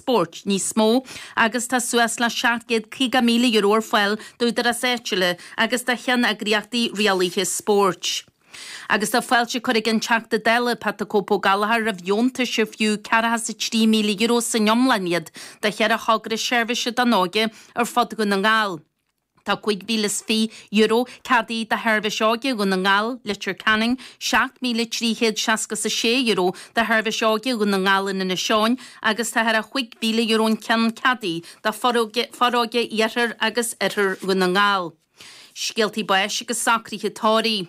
spóirt níos mó agus tá suas le €750,000 ar fáil d'údaráis áitiúla agus do cheanneagraíochtaí rialaithe spóirt. Agus tá fáilte curtha ag an Teachta Dála Pat 'The Cope' Ó Gallchóir roimh dheontais ar fiú ceathracha is a trí míle euro san iomlán iad do cheithre thogra seirbhíse don óige ar fud Dhún na nGall. Tá €5,020 ceadaithe do Sheirbhís Óige Dhún na nGall, Leitir Ceanainn, €7,366 do Sheirbhís Óige Dhún na nGall in Inis Eoghain agus tá thar €5,000 an ceann ceadaithe do Foróige iarthar agus oirthear Dhún na nGall. Scéaltaí báis agus socruithe tórraimh.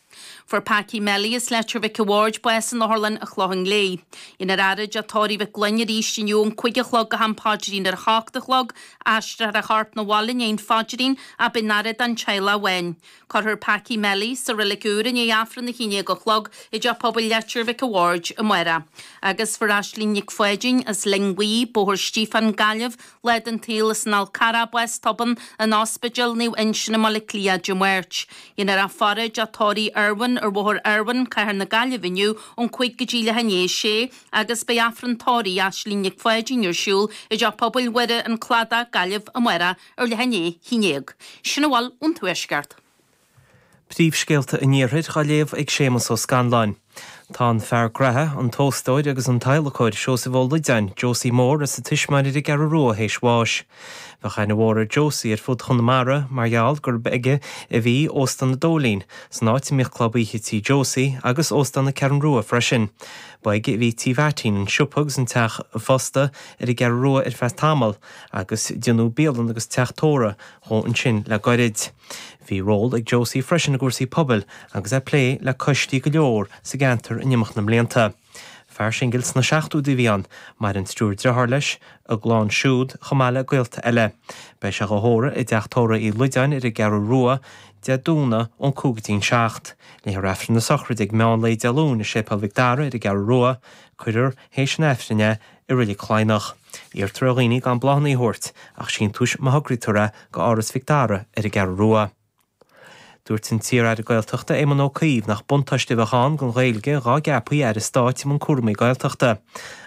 Fuair Packie Melly as Leitir Mhic a' Bhaird bás in Otharlann an Chlocháin Léith. Déanfar a fhaire i dTeach Tórraimh Mhic Fhloinn arís inniu ón cúig a chlog go ham paidrín ar a hocht a chlog. Aistreofar a chorp na bhaile i ndiaidh an phaidrín ach beidh an fhaire don teaghlach amháin. Cuirfear Packie Melly sa Reilig Úr i ndiaidh Aifreann a haon déag a chlog i dteach pobail Leitir Mhic a' Bhaird amárach. Agus fuair Aislinn Nic Pháidín as Linn Bhuí, Bóthar Stíofáin, Gaillimh, Lá den tsaol as an Fhál Carrach bás tobann in Ospidéal Naomh Uinseann i mBaile Átha Cliath Dé Máirt. Déanfar a faire i dTeach Tórraimh Irwin ar Bhóthar Irwin, Cathair na Gaillimhe inniu ón cúig go dtí leath i ndiaidh a sé agus beidh Aifreann Tórraimh Aislinn Nic Pháidín ar siúl i dTeach Pobail Mhuire, An Cladach, Gaillimh amárach ar leath i ndiaidh a haon dhéag. Sin a bhfuil ón Tuaisceart. Príomhscéalta an Iarthair dhá léamh ag Séamus Ó Scanláin. Tá an fear graithe, an t-óstóir agus an t-adhlacóir Seosamh Ó Loideáin, Josie Mór, as an Tismeáin ar an gCeathrú Rua théis bháis. Bheadh aithne mhór ar Josie ar fud Chonamara mar gheall gurb aige a bhí Óstán an Dóilín, san áit a mbíodh Club Oíche Tí Josie, agus Óstán na Ceathrún Rua freisin. Ba aige a bhí Tí Mheaitín, an siopa agus an teach ósta ar an gCeathrú Rua ar feadh tamaill, agus déanadh bialann agus teach tórraimh dhó ansin le goirid. Bhí ról ag Josie freisin i gcúrsaí pobail agus é ag plé le coistí go leor sa gceantar in imeacht na mblianta. Fear singil sna seachtóidí a bhí ann. Maireann triúr driotháir leis, a gclann siúd chomh maith le gaolta eile. Beidh sé dhá thórramh i dTeach Tórraimh Uí Loideáin ar an gCeathrú Rua Dé Domhnaigh ón cúig go dtí an seacht. Léifear Aifreann na sochraide ag meán lae Dé Luain i Séipéal Mhic Dara ar an gCeathrú Rua. Cuirfear théis an Aifrinn é I reilig Chladhnach, iarrtar ar dhaoine gan bláthanna a thabhairt ach síntiúis má thograítear é go Áras Mhic Dara ar an gCeathrú Rua. Dúirt an t-iar-aire Gaeltachta Éamon Ó Cuív nach buntáiste a bheadh ann don Ghaeilge dhá gceapfaí aire stáit i mbun cúramaí Gaeltachta.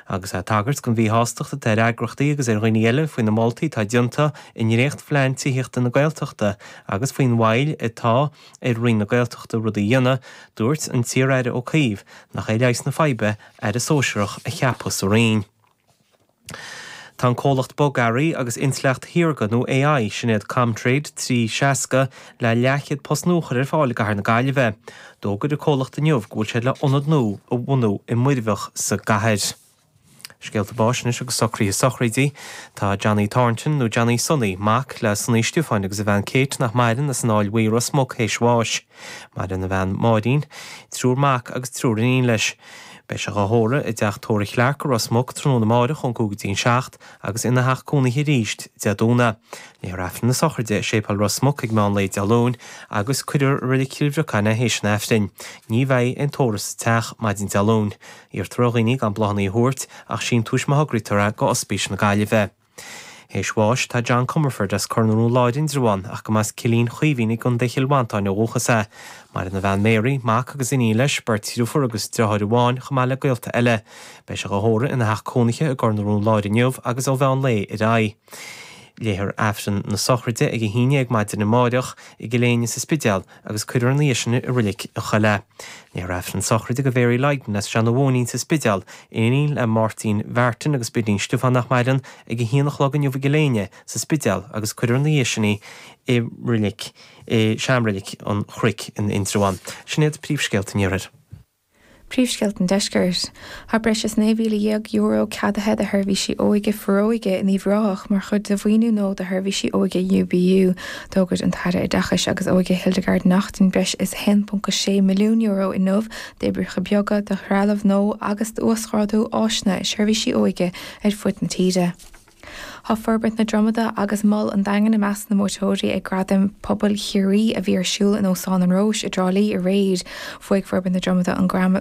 Agus é ag tagairt don mhíshástacht atá ar eagraíochtaí agus ar dhaoine eile faoi na moltaí atá déanta i ndréachtphlean tithíochta na Gaeltachta agus faoin mhoill atá ar Roinn na Gaeltachta rudaí a dhéanamh, dúirt an t-iar-aire Ó Cuív nach é leigheas na faidhbe Aire Sóisearach a cheapadh sa Roinn. Tá an comhlacht bogearraí agus intleacht shaorga nó AI, sin iad ComTrade 360, le leathchéad post nua a chur ar fáil i gcathair na Gaillimhe. D'fhógair an comhlacht inniu go bhfuil siad le ionad nua a bhunú i Muirbheach sa gcathair. Scéalta báis anois agus socruithe sochraidí. Tá Johnny Thornton, nó Johnny Sonaí, mac le Sonaí Stiofáin agus a bhean Kate, nach maireann, as an Aill Bhuí i Ros Muc théis bháis. Maireann a bhean Máirín, triúr mac agus triúr iníon leis. Beidh sé dhá thórramh i dteach Tórraimh Chlarke i Ros Muc tráthnóna amárach ón gcúig go dtí an seacht agus ina theach cónaithe arís Dé Domhnaigh. Léifear Aifreann na Sochraide i Séipéal Ros Muc ag meán lae Dé Luain agus cuirfear i Roilig Chill Bhriocáin é théis an Aifrinn. Ní bheidh aon tórramh sa teach maidin Dé Luain. Iarrtar ar dhaoine gan bláthanna a thabhairt ach síntiúis má thograítear é go Ospís na Gaillimhe. Théis bháis, tá John Comerford as Cor na Rón Láir, Indreabhán, ach go mba as Cillín Chaoimhín i gContae Chill Mhantáin ó dhúchas é. Maireann a bhean Mary, mac agus iníon leis, beirt dhriofúr agus driotháir amháin, chomh maith le gaolta eile. Beidh sé dhá thórramh ina theach cónaithe i gCor na Rón Láir inniu agus ó mheán lae ar aghaidh. Léifear Aifreann na sochraide ag a haon déag maidin amáireach, i gCill Éinne sa Spidéal, agus cuirfear ina dhiaidh sin i Roilig an Choilligh é. Léifear aifreann sochraide go Mhary Lydon as Seanadh Mhóinín sa Spidéal, iníon le Máirtín Mhartin agus Bidín Stiofáin nach maireann, ag a haon a chlog inniu i gCill Éinne sa Spidéal agus cuirfear ina dhiaidh sin í i Roilig, i sean-Roilig an Chnoic in Indreabhán. Sin iad príomhscéalta an iarthair. Príomhscéalta an Deiscirt. Tá breis is €19,000 ceadaithe do sheirbhísí óige, Foróige, in Uíbh Ráthach mar chuid de mhaoiniú nua do sheirbhísí óige UBU. D'fhógair an tAire Oideachais agus Óige Hildegarde Naughton breis is €1.6 milliún inniu d'oibreacha beaga, do threalamh nua agus d'uasghrádú áiseanna i seirbhísí óige ar fud na tíre. Tá Forbairt na Dromoda agus Mol an Daingin i measc na mbuaiteoirí ag Gradaim Pobail Chiarraí a bhí ar siúl in Óstán an Róis i dTrá Lí aréir. Bhuaigh Forbairt na Dromoda an Gradam.